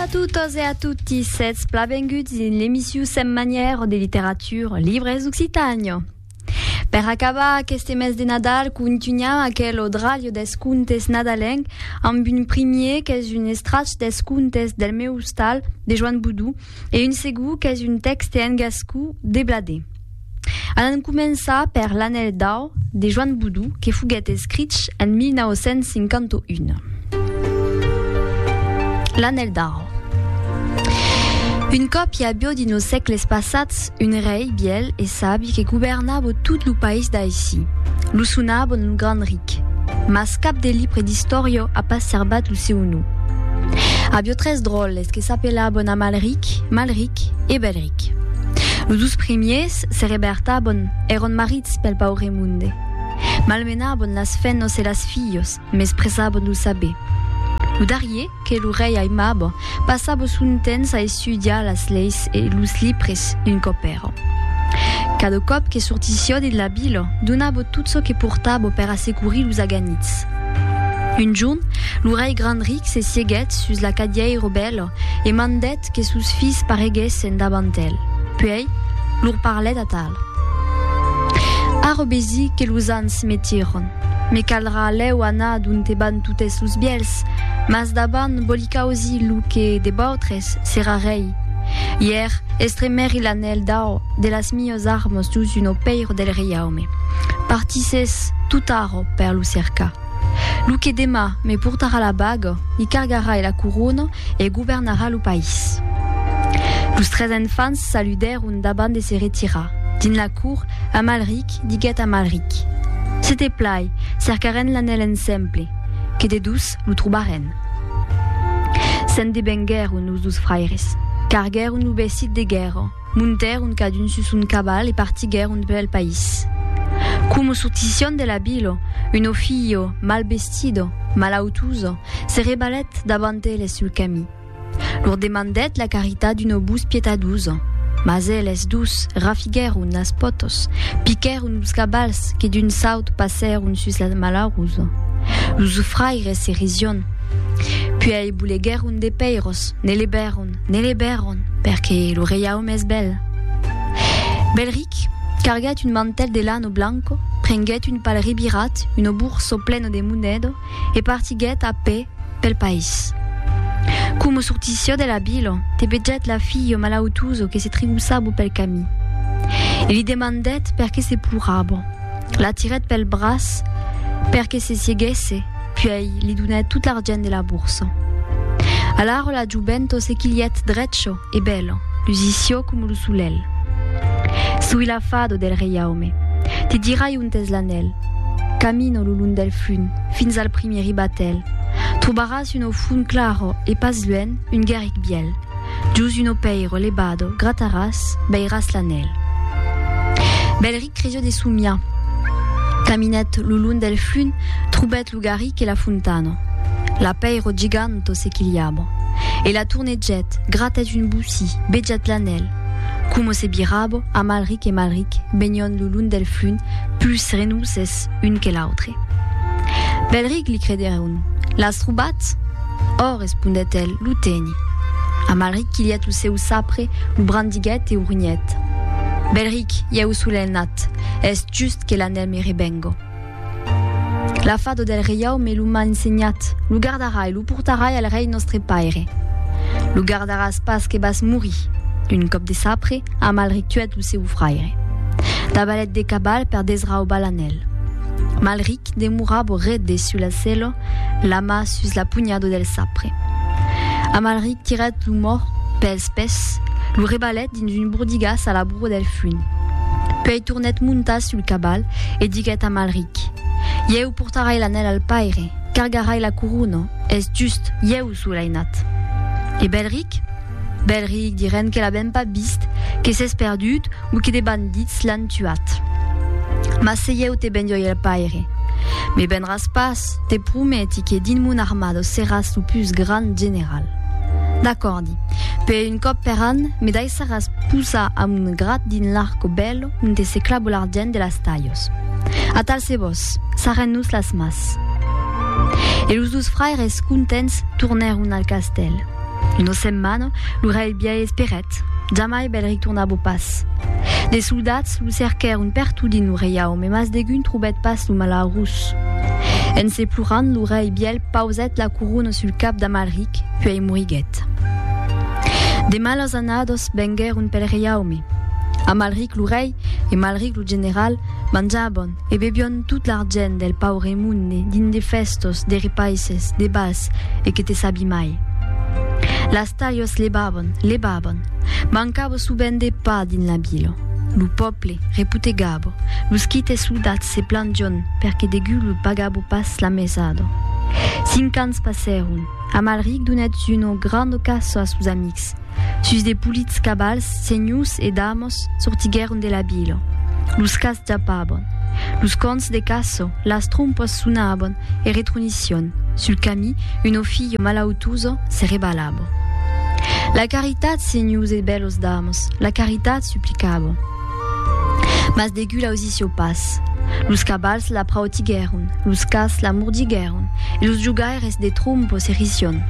a totes e a tutti, sètz plavenguts dins l'emission setmanièr de literatura Libres d'Occitània. Per acabar aqueste mes de Nadal, contunham aquel odralio dels contes nadalenc amb un primier qu'es un estratge dels contes del meu ostal de Joan Boudou, e un segur qu'es un tèxte en gascú de Bladé. Alan començar per L'Anèl d'Au de Joan Boudou que foguèt escrich en 1951. L'Anèl d'Au. Un còp i avió dins los sècles passats un rei bièl e sabi que governava tot lo país d'aicí. Lo sonava lo Gran Ric, mas cap de libre d'istòria a pas serbat lo seu nom. Avió tres dròlles, Es que s'apelaban Amalric, Malric e Belric. Los dus primiers se rebertaban, èran marits pel paure monde. Malmenaban las fennas e las filhas, mes presaban lo saber. Lo darrier, que lo rei aimaba, passava son temps a estudiar las leis e los libres d'un copèra. Cada còp que sortissiá dins la vila, donava tot çò que portava per assecurir los aganits. Un jorn, lo rei grand ric se sieguèt sus la cadièira bèla e mandèt que sos filhs pareguèssen davant el. Puèi, lor parlèt atal. Ara vesi que los ans me tiran. Me caldrà lèu anar donte van totes los bièlhs, mas davant vòli causir lo que de vautres serà rei. Ièr, estremèri l'anèl d'au de las miuas armas dous un opèira del reiaume. Partissètz totara. Per lo cercar. Lo que demà me portarà la baga, li cargarai la corona e governarà lo país. Los tres enfants saludèron davant de se retirar. Dins la cour, Amalric diguèt a Malric, Se te plai, cercarèn l'anèl ensemble, que de dus lo trobarèn. Se'n devenguèron los dus fraires, carguèron lo vestit de guèrra, Montèron cadun sus son caval e partiguèron pel país. Como sortission de la vilo, un ofilho mal vestido, malautuso, se rebalèt davant eles sul camí. Lor demandèt la caritat d'un obús pietaduso, mas eles dus rafiguèron las pòtos, piquèron los cavals que d'un saut passèron sus la malauruso. Los fraires se rision. Puèi boleguèron de pèiros, ne levèron. Ne le bèron, perque lo reiaume es bèl. Belric carguèt un mantèl de lano blanco, prenguèt un pal rebirat, uno burso pleno de moneda, e partiguèt a pè pel país. Coma sortissió de la vila, te vegèt la filha malautosa que se trigossava pel camí. E li demandèt perque se plorava. La tirèt pel braç perque se sieguèsse Puèi li donèt tot l'argent de la borsa. Alaro la jovento se quilhèt drecho e bèlo, lusicio coma lo solelh. Soi l'afado del reiaume. Te dirai ont es l'anèl. Camino lo long del flunh, fins al primièr ribatèl. Trobaràs un ofon claro e pas luènh un guerric bièl. Jos un opèiro levado grataràs, veiràs l'anèl. Bèl ric. Crejo de somiar. Caminèt lo long del flum, trobèt lo garric e la fontana. L'apèiro giganto se quilhava. E la tornegèt, gratèt un bocí, bejèt l'anèl. Coma se birava, Amalric e Malric benion lo long del flum, pus renouses un que l'autre. Belric li credèron, L'as trobat? Ò, respondèt el, lo teni. Amalric quilhèt lo seu sapre, lo brandiguèt e o runhèt. Belric, ieu solen nat, es just que l'anèl me rebengo. La fada del reiau me lo m'a ensenhat, lo gardarai, lo portarai al rei nòstre paire. Lo gardaràs pas que vas morir. Un còp de sapre, Amalric tuèt lo seu fraire. Dabalèt de cabal per desraubar l'anèl. Malric demorabo ret de sul a cèlo, la mà sus la punhado del sapre. Amalric tirèt lo mòrt pels pès, lo rebalèt dins un bordigàs a la brua del fuin. Puèi tornèt montar sul cabal e diguèt a Amalric, Ieu portarai l'anèl al paire, cargarai la corona, es just, ieu sou l'ainat. E Bèlric? Bèlric, dirèn que l'avèm pas vist, que s'es perdut, Bouquet de bandits l'an tuat. Mas se ieu te bendioi el paire, me benràs pas, te prometi que dins mon armada seràs lo pus grand general. D'acòrdi, per un còp per an me daissaràs posar a mon grat dins l'arco bèlo onte se clava l'argent de las talhos. Atal se vos, sarrèn-nos las mas. E los dos fraires contents tornèron al castèl. Una setmana, lo rei biais esperèt. Jamai bèl retornabo pas. De soldats lo cerquèron pertot dins lo reiaume, mas degun trobèt pas lo malaurós. En se plorant, lo rei biais pausèt la corona sul cap d'Amalric, puèi moriguèt. De malas annadas venguèron pel reiaume. Amalric lo rei e Malric lo general manjaban. E bebion tot l'argent del paure monde dins de fèstos, de repaisses, de bals, e que te sabi mai. Las talhas levavan, levavan. Mancava sovent de pa dins la vila. Lo pòble reputegava. Los quites soldats se plangion perque degú los pagava pas la mesada. Cinc ans passèron. Amalric donèt una granda caça a sos amics. Sus de polits cavals, senhors e damas sortiguèron de la vila. Los cas japavan. Los còns de caça, las trompas sonavan e retrunicion. Sul camí, una filha malautosa se rebalava. La caritat, senhors e bèlas damas, la caritat, suplicava. Mas degut l'ausissió pas. Los cabals la prautiguèron, los cats la mordiguèron, e los jogaires de trompo s'errissión.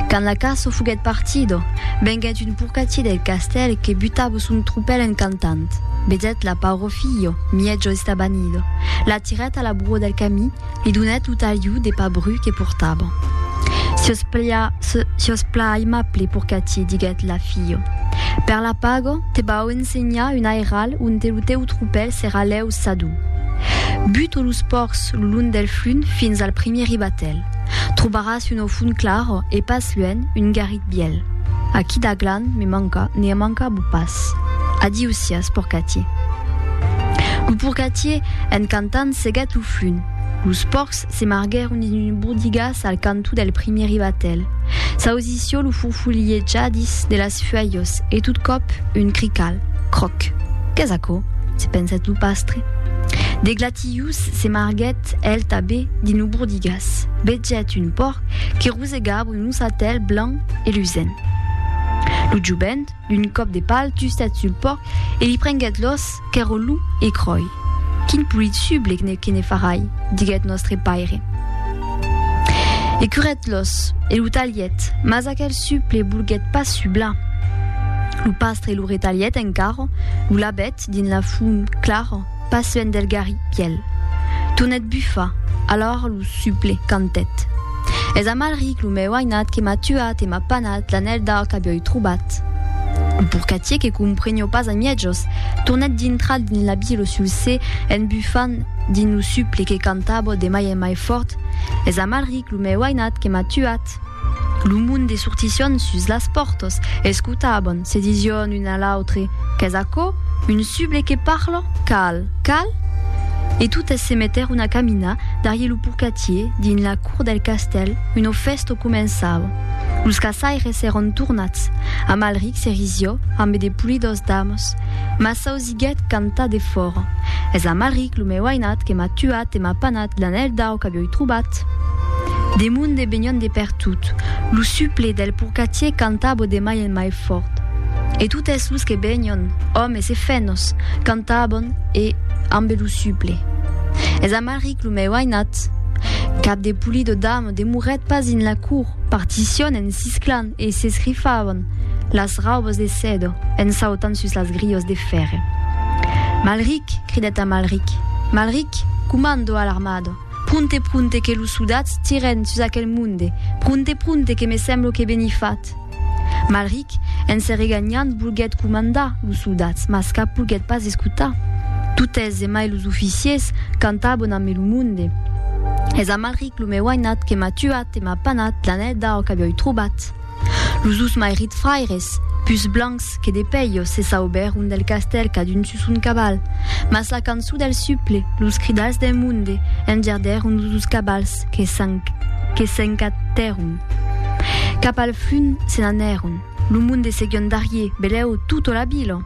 Quand la caço foguèt partido, venguèt un porcatier del castèl que butavo son tropèl en cantant. Vedèt-la, pauro filho, mièjo estabanido, la tirèt a la broa del camí, Li donèt lo talhiu de pa bru que portava. Sios plia, sios pla aimable pur qu'a ti, diguèt la filha. Per la paga, te vau ensenhar un airal onte lo teu tropèl serà lèu sador. Buta los pòrcs lo long del flum fins al primièr ribatèl. Trobaràs una font clara e pas luènh un garritin. Biel. Aquí da glan me manca, ne manca bu pas. Adiu sias, porcatier. Lo porcatier, en cantant, seguèt lo flun. Los pòrcs se marguèron dins un bordigas al canto del primieri batèl. S'ausissió lo furfulhejadis de las fuèlhos e tot còp un crical. Cròc. Qu'es aquò? se pensèt lo pastre. De glatius se marguèt el tabé dins lo bordigas. Vegèt un pòrc que Deus e Gabru nos atèl blanc e lusent. Lo jovent, d'un còp de pal tustat sul pòrc e li prenguèt l'òs qu'èr o lum e cròi. Quin polit sublec ne que ne farai, diguèt nòstre paire. E curèt l'òs e lo talhèt, mas aquel suple volguèt pas sublar. Lo pastre lo retalhèt encara, lo lavèt, Ret dins la fum clara, pas luènh del garri pièl. Tornèt bufar, alora lo suple cantèt. Es amalric lo meu ainat que m'a tuat e m'a panat l'anèl d'ar qu'avioi trobat. Lo porcatier que comprenió pas a mièjos, tornèt dintrar dins la vila lo sulcè en bufant dins lo suple que cantava de mai en mai fòrt, Es amalric lo meu ainat que m'a tuat. Lo monde sortission sus las pòrtas, escotaban, se dision un a l'autre, Qu'es aquò? Un suble que parla? Cal, cal? E totes se metèron a caminar darrier lo porcatier dins la cour del castèl, una fèsta començava. Los caçaires èran tornats. Amalric se risió ambe de polidors damas, mas s'ausiá Diguèt cantar defòra. Es amaric, lo meu ainat, que m'a tuat e m'a panat l'anèl d'au qu'avioi trobat. De monde venion de pertot. Lo suple del porcatier cantabo de mai en mai fòrt. E totes los que venion, òmes e fenhos, cantabon e ambe lo suple. Es amaric, lo meu ainat. Cap de pulido damo demorèt pas dins la cour. Particion en sisclan. E s'escrifavan las raubas de sèdo en sautant sus las grilhas de fèrre. Malric! cridèt Amalric. Malric, comando a l'armada! Pronte, pronte, que los sodats tirèn sus aquel monde! Pronte, pronte, que me semblo que ben i fat! Malric, en se reganhant, volguèt comandar los sodats, mas cap volguèt pas escotar. Totes, e mai los oficiers, cantavan amé lo monde. Es Amalric, lo meu ainat, que m'a tuat e. M'a panat la neda o qu'avioi trobat. Los dus mairit fraires, pus blancs que de pelho, se saubèron del castèl cadun sus son caval. Mas la cançon del suple, los cridals del monde, engerdèron los dus cavals que s'encatèron. Cap al fum se n'anèron. Lo monde seguion darrier, belèu, totto la vila.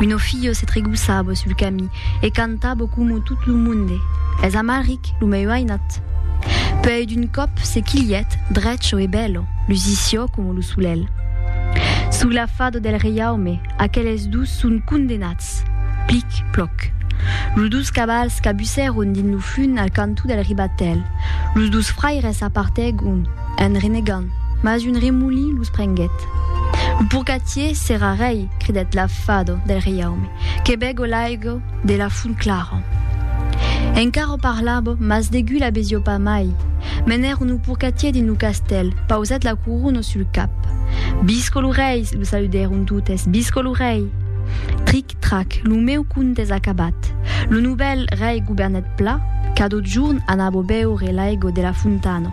Uno fillo se tregussabo sul camí e cantabo como tot lo monde, Es Amalric, lo meu ainat. Puèi d'un còp se quilhèt, drecho e bèlo, lusissió como lo solèl. Sug la fado del reiaume, aqueles dus son condenats. Plic, ploc. Los dus cavals cabussèron dins lo fun al cantó del ribatèl. Los dus fraires s'apartègon, un renegant. Mas un remolí los prenguèt. Lo purgatier s'èra rei, cridèt la fado del reiaume, que bego l'aigo de la font clara. Encara parlabo, mas degui la besio pas mai. Menèron lo purgatier dins lo castèl, pausèt la corona sul cap. Visco lo rei! lo saludèron totes, visco lo rei! Tric, trac, lo meu conte es acabat. Lo novèl rei governèt pla, cadò jorn anabo beure l'aigo de la fontana,